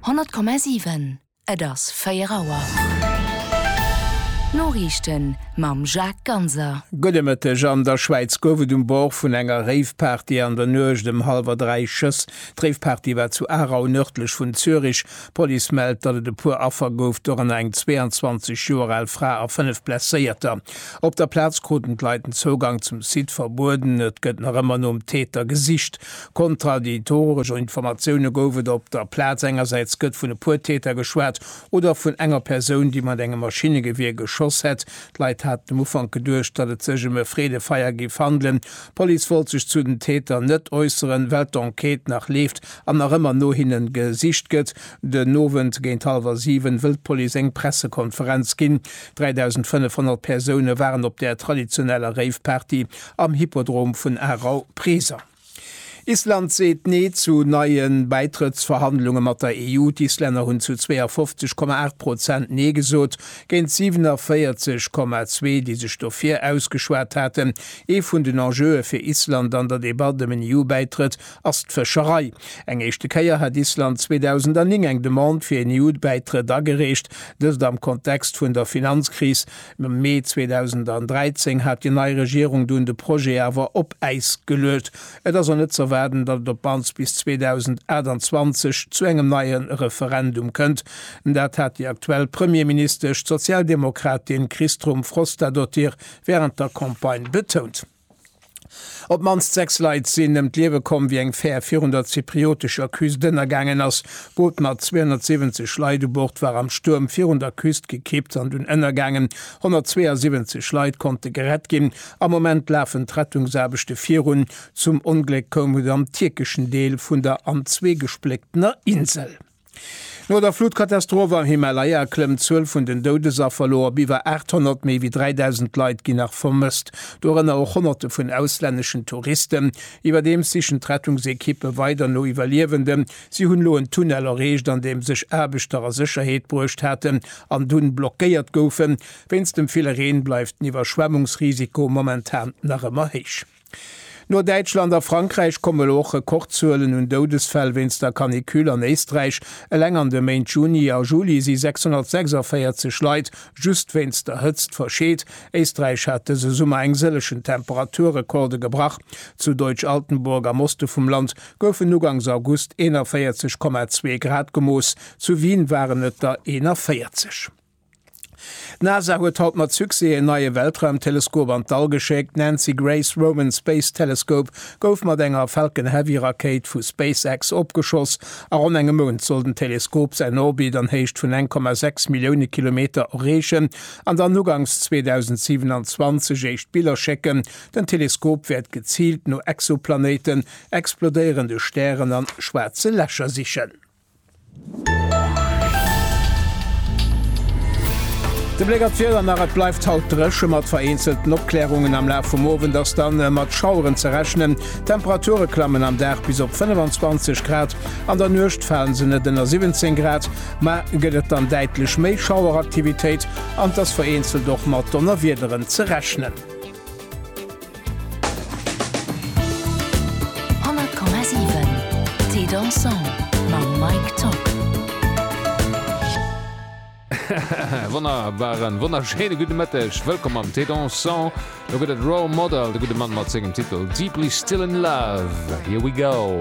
100,7 Et ass 4 Auer. D'Noriichten mam Jacques Ganser. Gudde Mëtteg, An der Schwäiz gouf et um Bord vun enger Rave-Party an der Nuecht ëm hallwer dräi Schëss. D'Rave-Party war zu Aarau, nërdlech vun Zürich. D'Police mellt, datt et e puer Affer gouf, dorënner eng 22 Joer al Fra a fënnef Blesséierter. Op der Plaz kruten d'Leit den Zougang zum Site verbueden. Et gëtt nach ëmmer nom Täter gesicht. Kontraditoresch Informatioune gouf et op der Plaz. Engersäits gëtt vun e puer Täter geschwat oder vun enger Persoun, déi mat engem Maschinnegewier geschoss hätt. D'Leit haten um Ufank geduecht, datt et sech ëm e Freedefeier géif handelen. D'Police wollt sech zu den Täter net äusseren, well d'Enquête nach leeft an nach ëmmer no hinne gesicht gëtt. Den Owend géint hallwer 7 wëll d'Police eng Pressekonferenz ginn. 3.500 Persoune waren op der traditioneller Rave-Party am Hippodrom vun Aarau present. Island seet Nee zu neie Bäitrëttsverhandlunge mat der EU. D'Islänner hunn zu 52, 8 Prozent Nee gesot, géint 47, 2 déi sech dofir ausgeschwat haten. Ee vun den Enjeue fir Island an der Debatt ëm en EU-Bäitrëtt ass d'Fëscherei. Eng éischte Kéier hat Island 2009 eng Demande fir en EU-Bäitrëtt agereecht, dëst am Kontext vun der Finanzkris. Am Mee 2013 hat déi nei Regierung dunn de Projet awer op Äis geluet. Et ass och net ze erwaarden, datt et op mannst bis 2028 zu engem neie Referendum kënnt. Dat hat déi aktuell Premierministesch, d'Sozialdemokratin Kristrún Frostadóttir, wärend der Campagne betount. Op d'mannst sechs Leit sinn ëm d'Liewe komm, wéi eng Fär virun der zypriotescher Küst ënnergaangen ass. D'Boot mat 270 Leit u Bord war am Stuerm virun der Küst gekippt an dunn ënnergaangen. 172 Leit konnte gerett ginn. Am Moment lafen d'Rettungsaarbechte virun. Zum Ongléck koum et am tierkeschen Deel vun der an zwee gesplécktener Insel. No der Flutkatastroph am Himalaya klëmmt d'Zuel vun den Doudesaffer elo op iwwer 800, méi wéi 3.000 Leit ginn nach vermësst, dorënner och Honnerte vun auslänneschen Touristen. Iwwerdeems sichen d'Rettungsekippe weider no Iwwerliewenden. Si hunn elo en Tunnel erreecht, an deem sech Aarbechter a Sécherheet bruecht haten an dunn blockéiert goufen. Wéinst dem ville Reen bleift den Iwwerschwemmungsrisiko momentan nach ëmmer héich. No Däitschland a Frankräich kommen elo och Rekordzuelen un Doudesfäll wéinst der Canicule an Éisträich. Eleng an de Méint Juni a Juli si 646 Leit just wéinst der Hëtzt verscheet. Éisträich hat dëse Summer eng sëllechen Temperaturrekorde gebrach. Zu Deutsch-Altenburg am Oste vum Land goufen ugangs August 41,2 Grad gemooss, zu Wien waren et der 41. D'NASA huet haut mat Succès en neie Weltraumteleskop an d'All geschéckt. D'Nancy Grace Roman Space Telescope gouf mat enger Falcon Heavy Rakéit vu SpaceX opgeschoss. A ronn engem Mount soll den Teleskop säin Orbit an Héicht vun 1,6 Millioune Kilometer erreechen an dann uganks 2027 éischt Biller schécken. Den Teleskop wäert geziilt no Exoplanéiten, explodéierende Stären an schwaarze Lächer sichen. De Bléck an d'Wieder nach, Et bleift haut dréche mat vereenzelten Opklärungen, am Laf vum Owend ass dann mat Schaueren ze rechnen. D'Temperature klammen am Dag bis op 25 Grad, an der Nuecht fale se net ënner 17 Grad. Ma gëtt et dann däitlech méi Schaueraktivitéit an et ass vereenzelt och mat Donnerwiederen ze rechnen. 100,7 Thé Dansant mam Mike Tock. Wonnerbaren, wonnerschéine gudde Mëtteg. Wëllkomm am Thé Dansant. Lo gëtt et Role Model, de gudde Mann mat sengem Titel Deeply Still In Love. Here we go!